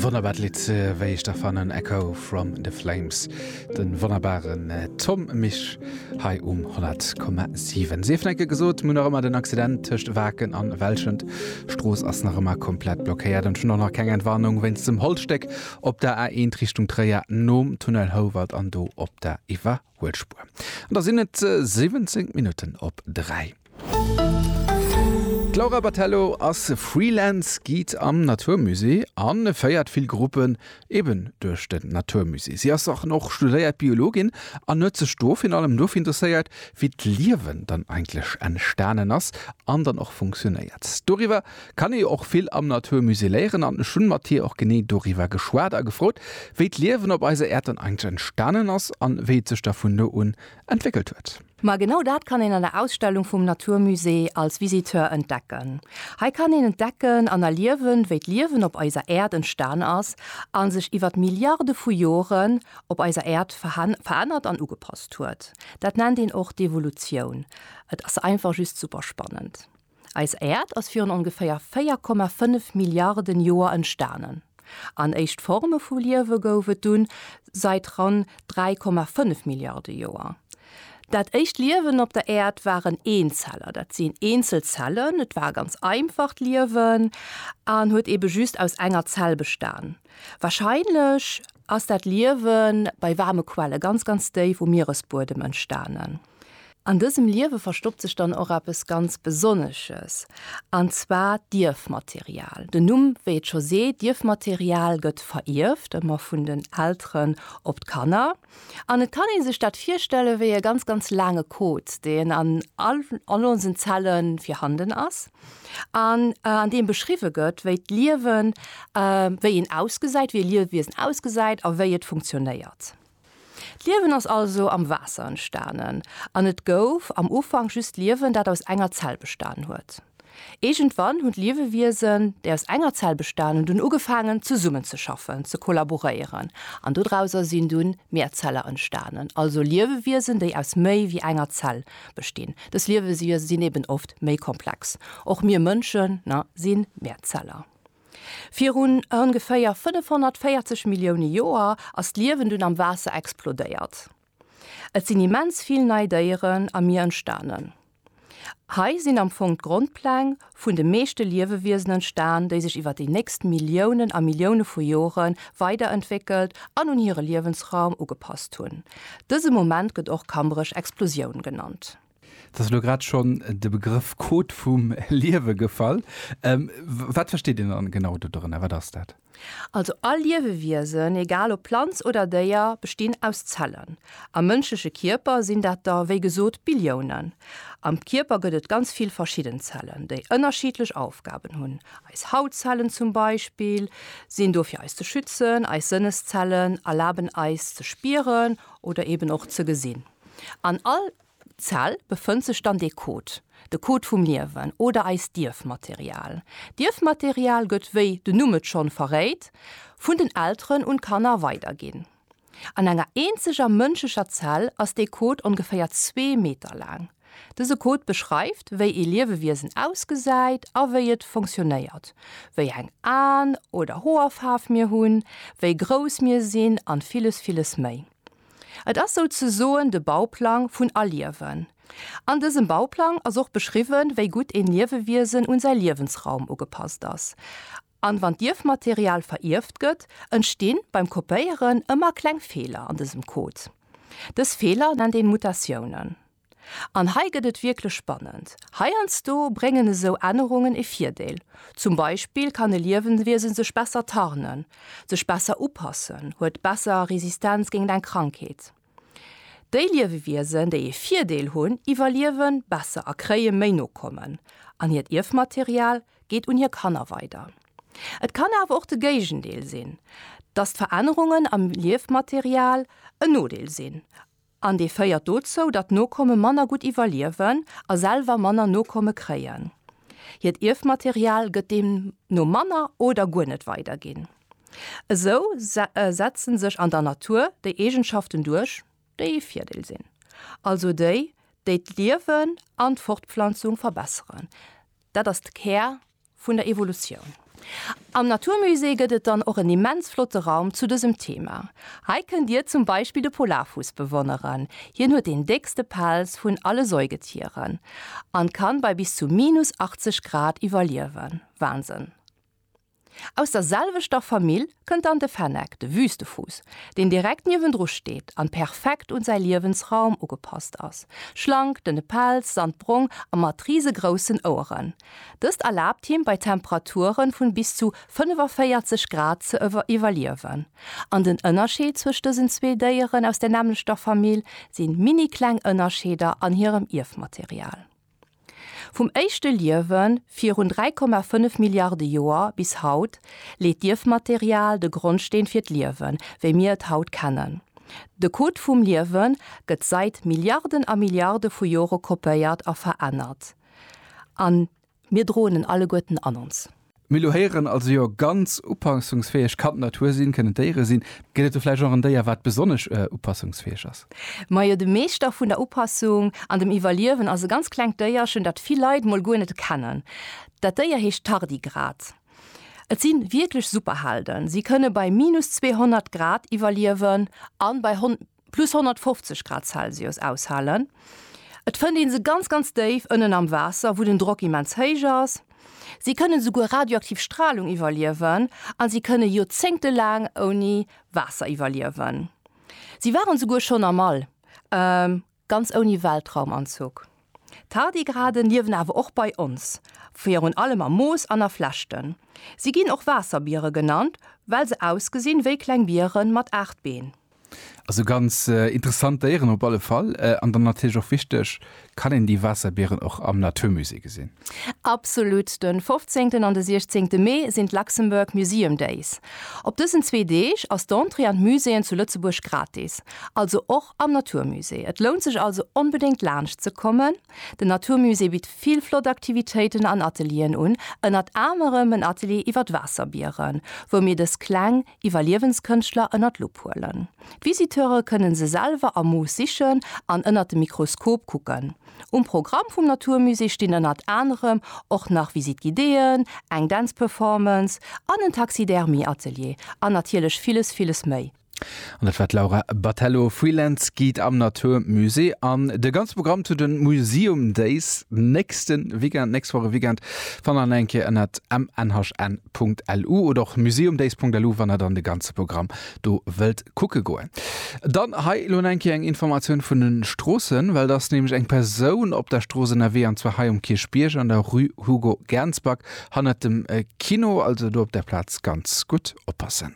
Wonnerbaart Lidd, wéi ech dach fannen, Echo from the Flames, de wonnerbaren Tom Misch hei um 100,7. Sief enke gesot, mir hunn nach ëmmer den Accident tëscht Waken an Welschent. D'Strooss ass nach ëmmer komplett blockéiert an et hunn och nach keng Entwarnung wéinst dem Holzstéck op der A1 Richtung Tréier nom Tunnel Houwald an do op der Iwwerquerung. Huel Spuer. An da sinn et 17 Minutten op 3. D'Laura Battello ass Freelance Guide am Natur Musée a féiert vill Gruppen eben duerch den Natur Musée. Si ass an och studéiert Biologin an huet sech do virun allem dofir interesséiert, wéi d'Liewen dann eigentlech entstanen ass an dann och funktionéiert. Doriwwer kann ee jo och vill am natur musée léieren an ech hunn mat hir och genee doriwwer geschwat a gefrot wéi d'Liewen op eiser Äerd dann eigentlech entstanen ass an wéi et sech da vun do un entwéckelt huet. Ma genau dat kann een an der Ausstellung vum natur musée als Visiteur entdecken. Hei kann een entdecken an erliewen wéi d'Liewen op eiser Äerd entstan ass an sech iwwert Milliarde vu Joren op eiser Äerd verännert an ugepasst huet. Dat nennt een och d'Evolutioun. Et ass einfach just super spannend. Eis Äerd ass virun ongeféier 4,5 Milliarden Joer entstanen, an éischt Forme vu Liewe gouf et dunn sait ran 3,5 Milliarde Joer. Dat éischt Liewen op der Äerd waren Eenzeller, dat sinn eenzel Zellen. Et war ganz einfacht Liewen an huet ebe just aus enger Zell bestan. Warscheinlech ass dat Liewe bei waarme Quelle ganz, ganz déif um Mieresbuedem entstanen. An dësem Liewe verstoppt sech dann och eppes ganz Besonnesches, an zwar d'Ierfmaterial. Den Numm, wéi et scho seet, d'Ierfmaterial gëtt verierft, ëmmer vun den Elteren op d'Kanner. An et kann ee sech dat virstelle wéi e ganz, ganz laange Code, deen an all all onsen Zelle virhanden ass, an an deem beschriwwe gëtt, wéi d'Liewen, wéi een ausgesäit, wéi e Liewiesen ausgesäit a wéi et funktionéiert. D'Liewen ass also am Waasser entstanen an et gouf am Ufank just Liewen, dat aus enger Zell bestan huet. Iergendwann hunn d'Liewewiesen, déi aus enger Zell bestan hunn, dunn ugefaangen zesummen ze schaffen, ze kollaboréieren an dodrauser sinn dunn Mehrzeller entstanen, also Liewewiesen, déi aus méi wéi enger Zell bestinn. Dës Liewewiese sinn eben oft méi komplex. Och mir Mënschen, na, si Mehrzeller. Virun ongeféier 540 Millioune Joer ass d'Liewen dunn am Waasser explodéiert. Et sinn immens vill nei Déieren am Mier entstanen. Hei sinn am Fong d'Grondpläng vun de meeschte Liewewiesen entstan, déi sech iwwer déi nächst Milliounen a Millioune vu Jore weiderentwéckelt an un hire Liewensraum ugepasst hunn. Dëse Moment gëtt och Kambrech-Explosioun genannt. Et ass elo grad schonn de Begrëff Code vum Liewe gefall. Wat versteet een dann genau do dorënner? Wat ass dat? Also all Liewewiesen, egal ob Planz oder Déier, bestinn aus Zellen. Am mënschleche Kierper sinn dat der, wéi gesot, Billiounen. Am Kierper gëtt et ganz vill verschidden Zellen, déi ënnerschiddlech Aufgaben hunn. Eis Hautzellen zum Beispill sinn do fir eis ze schützen, eis Sënneszellen erlaben eis ze spieren oder eben och ze gesinn. An all. Zell befënnt sech dann dee Code, de Code vum Liewen oder eist Dierfmaterial. Dierfmaterial gëtt, wéi den Numm et schonn verréit, vun den Elteren un d'Kanner weiderginn. An enger eenzeger mënschlecher Zell ass dee Code ongeféier zwee Meter laang. Dëse Code beschreift, wéi ee Liewewiesen ausgesäit a wéi et funktionéiert, wéi eng Aen oder Hoerfaarf mir hunn, wéi grouss mir sinn an villes, villes méi. Et ass souzesoen de Bauplang vun Aliewen. An dësem Bauplang ass och beschriwwen, wéi gutt een Liewewiesen un säi Liewensraum ugepasst ass. An wann d'Ierfmaterial verierft gëtt, entstinn beim Kopéieren ëmmer kleng Feeler an dësem Code. Dës Feeler nennt een Mutatiounen. An hei gëtt et wierklech spannend. Heiansdo bréngen esou Ännerungen e Virdeel. Zum Beispill kann e Liewenwiesen sech besser tarnen, sech besser upassen, huet besser Resistenz géingt eng Krankheet. Déi Liewewiesen, déi e Virdeel hunn, iwwerliewe besser a kréie méi Nokommen, an hiert Ierfmaterial geet un hir Kanner weider. Et kann awer och de Géigendeel sinn, dass d'Verännerungen am Ierfmaterial en Nodeel sinn. An dee féiert dozou, datt d'Nokomme manner gutt iwwerliewen a selwer manner Nokomme kréien. Hiert Ierfmaterial gëtt deemno manner oder guer net weiderginn. Esou setzen sech an der Natur déi Eegenschaften duerch, déi ee Virdeel sinn, also déi, déi d'Liewen an d'Fortpflanzung verbesseren. Dat ass de Kär Vun der Evolutioun. Am Naturmusée gëtt et dann och en immens flotte Raum zu dësem Thema. Hei kënnt Dir zum Beispill de Polarfuuss bewonneren. Hien huet deen déckste Pelz vun alle Säugetieren an kann bei bis zu minus 80 Grad iwwerliewen. Wahnsinn! Aus der selwechter Famill kënnt dann de Fennec, de Wüstefuuss, deen direkt niewendru steet an perfekt un säi Liewensraum ugepasst ass. Schlank, dënne Pelz, sandbrong a mat risegroussen Oueren. Dëst erlaabt him bei Temperaturen vun bis zu 45 Grad ze iwwerliewen. An den Ënnerscheed zwëscht dësen zwee Déieren aus der nämmlechter Famill sinn minikleng Ënnerscheeder an hirem Ierfmaterial. Vum éischte Liewen virun 3,5 Milliarde Joer bis haut leet d'Ierfmaterial de Grondsteen fir d'Liewen, wéi mir et haut kennen. De Code vum Liewen gëtt sait Milliarden a Milliarde vu Jore kopéiert a verännert. an mir droen en alleguerten an ons. Mir elo héieren also jo ganz upassungsfäeg kann d'Natur sinn, kënnen d'Déiere sinn. Gëtt et do vläicht och en Déier, wat besonnesch upassungsfäeg ass? Majo, de Meeschter vun der Upassung an dem Iwwerliewen ass e ganz klengt Déierchen, dat vill Leit mol guer net kennen. Dat Déier heescht Tardigrad. Et si wierklech Superhelden. Si kënne bei minus 200 Grad iwwerliewen a bei plus 150 Grad Celsius aushalen. Et fënnt ee se ganz ganz déif ënnen am Waasser, wou den Drock immens héich ass. Si kënnen esouguer radioaktiv Stralung iwwerliewen a si kënne Joerzéngte laang ouni Waasser iwwerliewen. Si waren esouguer schonn am All, ganz ouni Weltraumanzuch. Tardigraden liewen awer och bei ons, virun allem am Moos an a Flechten. Si ginn och Waasserbiere genannt, well se ausgesinn wéi kleng Biere mat 8 Been. Also ganz interessant Déieren op alle Fall. An dann natierlech och wichteg, kann een déi Waasserbieren och am Naturmusée gesinn? Absolut! De 15. an de 16. Mee sinn d'Luxembourg Museum Days. Op dësen zwee Deeg ass d'Entrée an d'Muséeën zu Lëtzebuerg gratis, also och am Naturmusée. Et lount sech also onbedéngt laanscht ze kommen. Den Naturmusée bitt vill flott Aktivitéiten an Atelieren un, ënnert anerem en Atelier iwwer d'Waasserbieren, wou mir dës kleng Iwwerliewenskënschtler ënner d'Lupp huelen. D'Visiteure kënne se selwer am Moos sichen an ënner dem Mikroskop kucken. Um Programm vum Naturmusée stinn ënnert anerem och nach Visite Guidéeën, eng Dänzperformance an en Taxidermie-Atelier an natierlech villes, villes méi. An dat war d'Laura Battello, Freelance Guide am Naturmusée. An de ganze Programm zu de Museum Days nächste Weekend, nächst Woch e Weekend, fannt der nach eng Kéier ënnert mnhn. days.lu oder och museumdays.lu, wann der dann de ganze Programm do wëllt kucke goen. Dann hei elo eng Kéier eng Informatioun vun den Stroossen, well et ass nämlech eng Persoun op der Strooss ënnerwee, an zwar hei um Kierchbierg an der Rue Hugo Gernsback hannert dem Kino, also do op der Plaz ganz gutt oppassen.